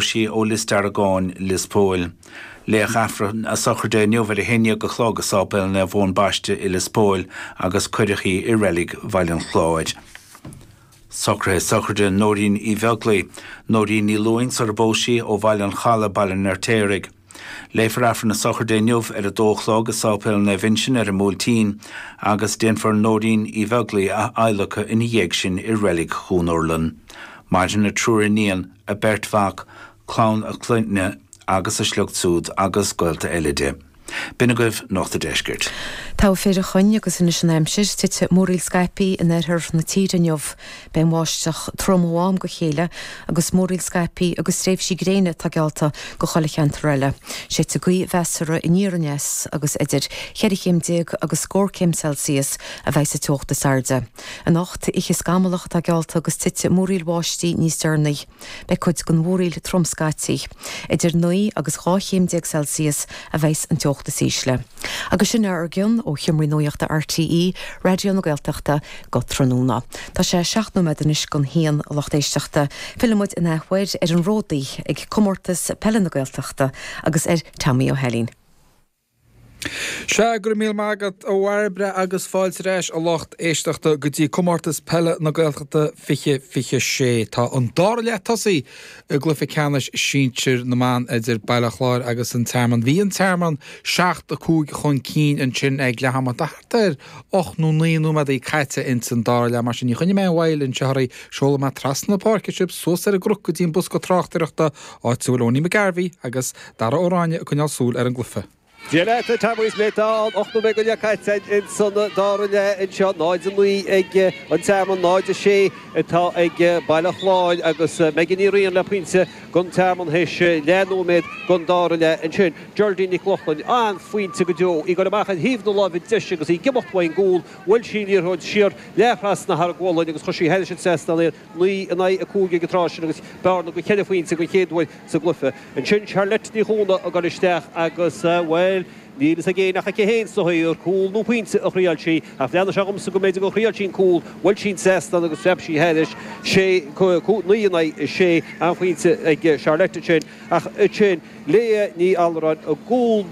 sí ó Lios Deargáin, Lios Póil. Léadh Aifreann a sochraide inniu ar a haon déag a chlog i Sáipéal Naomh Eoin Baiste i Lios Póil agus cuireadh í i reilig Bhaile an Chláir. Socruithe sochraide Nóirín Uí Bheaglaoi, Nóirín Ní Lúing, sarar phós sí, ó Bhaile an Chalaidh, Baile an Fheirtéaraigh. Léifear Aifreann a Sochraide inniu ar a dó a chlog i Sáipéal Naomh Uinseann ar an mBuailtín agus déanfar Nóirín Uí Bheaglaoi a adhlacadh ina dhiaidh sin i Reilig Dhún Urlann. Maireann a triúr iníon, a beirt mhac, clann a clainne agus a sliocht siúd agus gaolta eile di. B'in agaibh Nuacht a' Deiscirt. Taobh thoir de Choinn agus anois an aimsir, Titfidh múraíl scaipthe in oirthear na tíre inniu. Beidh an bháisteach trom ó am go chéile agus múraíl scaipthe agus tréimhsí gréine atá geallta go chuile cheantar eile. Séidfidh gaoth mheasartha aniar aneas agus idir cheithre chéim déag agus scór céim Celsius a bheas an teocht is airde. Anocht, oíche scamallach atá geallta agus titfidh múraíl bháistí níos deireanaí. Beidh cuid den mhúraíl trom scaití. Idir naoi agus dhá chéim déag Celsius a bheas an teocht is ísle. Agus sin é ár gcion ó sheomraí nuachta RTÉ Raidió na Gaeltachta go tráthnóna. Tá sé seacht nóiméad anois don haon a lucht éisteachta. Fillfidh muid in athuair ar an ródaí ag Comórtas Peile na Gaeltachta agus ar Tommy Ó hAilín. Sea, go raibh míle maith agat, a Bhairbre, agus fáilte ar ais, a lucht éisteachta, go dtí Comórtas Peile na Gaeltachta 2026. Tá an dara leath tosaithe i gcluiche ceannais sinsir na mban idir Baile Chláir agus An Tearmann. Bhí An Tearmann seacht a cúig chun cinn ansin ag leath ama, thart ar ocht nó naoi nóiméadaí caite ins an dara leath. Mar sin, ní choinneoidh mé aon mhoill anseo oraibh. Seolfaidh mé trasna na páirce sibh, suas ar an gcnoc go dtí an bosca tráchtaireachta áit a bhfuil Owenie McGarvey agus Dara Ó Ráinne ag coinneáil súil ar an gcluiche. Dia leat, a Tommy, sea, tá ocht nóiméad go leith caite againn insan dara leath anseo, 0-9 ag an Tearmann, 0-6 atá ag Baile Chláir agus Megan Ní Riain le pointe don Tearmann théis leath nóiméad den dara leath ansin. Geraldine Nic Lochlainn an-phointe go deo, í goil amach ar thaobh na láimhe deise agus í ag imeacht uaidh an gcúl, bhuail sí an liathróid siar leath-thrasna thar a gualainn agus chuir sí thairis an trasnán í. naoi in aghaidh a cúig ag an tráth sin agus bearna de cheithre phointe don chéad uair sa gcluiche. Ansin Charlotte Ní Chuana a ghoil isteach agus, bhuel, níl fhios ag éinne ach aici féin, is dócha, ar cúl nó pointe a thriáil sí ach bhreathnaigh sé dhomsa go mb'fhéidir gur thriáil sí an cúl, bhuail sí an seastán agus phreab sí thairis. Sé, naoi in aghaidh a sé an pointe ag Charlotte ansin ach ansin, Leah Ní Alluráin i gcúl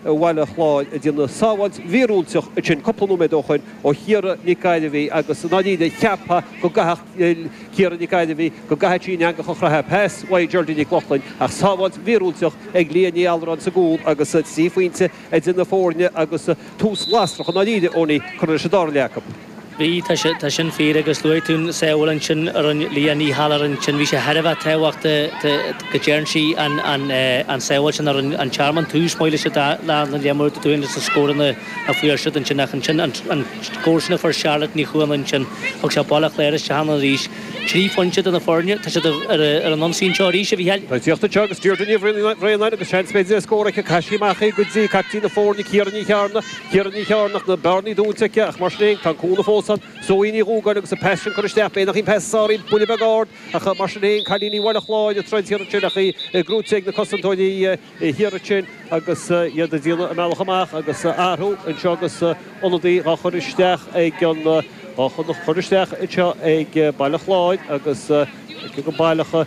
Bhaile Chláir ag déanamh sábháilt mhíorúilteach ansin cúpla nóiméad ó shoin ó Chiara Nic Gairbhigh agus i ndáiríre cheapfá go gcaithfeadh Ciara Nic Gairbhigh go gcaithfidh sí an eangach a chroitheadh pas uaidh Geraldine Nic Lochlainn ach sábháilt mhíorúilteach ag Leah Ní Alluráin sa gcúl agus trí phointe idir na foirne agus tús lasrach i ndáiríre Owenie, curtha leis an dara leath acu. Bhí, tá sin fíor, agus luaigh tú an sábháil ansin a rinne Liadh Ní hAiléar ansin, bhí sé thar a bheith tábhachtach go dtearn sí an sábháil sin a thug an Tearmann tús maith leis an dá leath dar leofa, ar ndóigh agus na scóranna a fuair siad ansin, ach ansin an scór sin a fuair Charlotte Ní Chuana ansin, thug sé Baile Chláir isteach ann arís. Trí phointe idir na foirne, tá siad ar an ionsaí anseo arís, a Mhicheáil. Tá ag teacht anseo agus Deirdre Ní Bhraonáin agus seans b'fhéidir ar scór aici, caitheann sí amach í go dtí captaen na foirne, Ciara Ní Chearna, Ciara Ní Chearnaigh, na bearnaí dúnta aici ach mar sin féin tá an cúnamh fós ann. Zoe Ní Dhúgáin agus a pas sin curtha isteach, bheadh, nach ea, an pas a sáraíodh, buille beag ard ach mar sin féin cailíní Bhaile Chláir ag troid thiar ansin ach í gnóite ag na cosantóirí thiar ansin agus iad ag déanamh a mbealach amach agus athrú anseo agus ionadaí dhá chur isteach ag an, dhá chur isteach anseo ag Baile Chláir agus go baileach.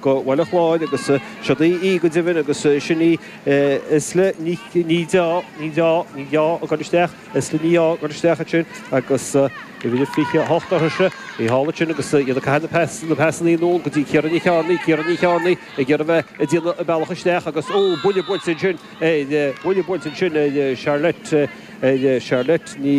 go Baile Chláir agus siod í í go deimhin agus sin í is le ní ní deá ní deá ní dá cur isteach is le ní á cur isteach ansin agus uimhir a 28 uirthi sin í thall ansin agus iad ag caitheamh na pas na pasannaí anonn go dtí Ciara Ní Chearnaigh Ciara Ní Chearnaigh ag iarraidh bheith ag déanamh a bealach isteach agus ó buille buailte ansin ar buille buailte ansin ar Charlotte ar Charlotte Ní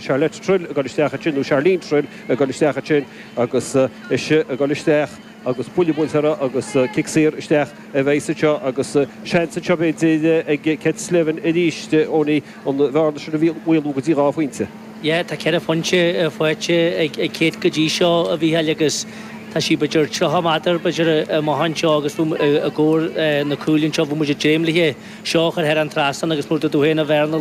Charlotte Trill á cur isteach ansin nó Charlene Trill á cur isteach ansin agus ise ag gabháil isteach agus buille buailte uirthi agus cic saor isteach a bheidh anseo agus seans anseo b'fhéidir ag Ced Slevin arís chun an bhearna sin a mhaolú go dtí dhá phointe. Yeah, tá ceithre phointe faighte ag Ced go dtí seo, a Mhícheáil, agus tá siad b'fhéidir 30 méadar b'fhéidir amach anseo agus os comhair na cúile anseo bheadh muid ag dréim léithe seo a chur thar an trasnán agus mar a dúirt tú féin an bhearna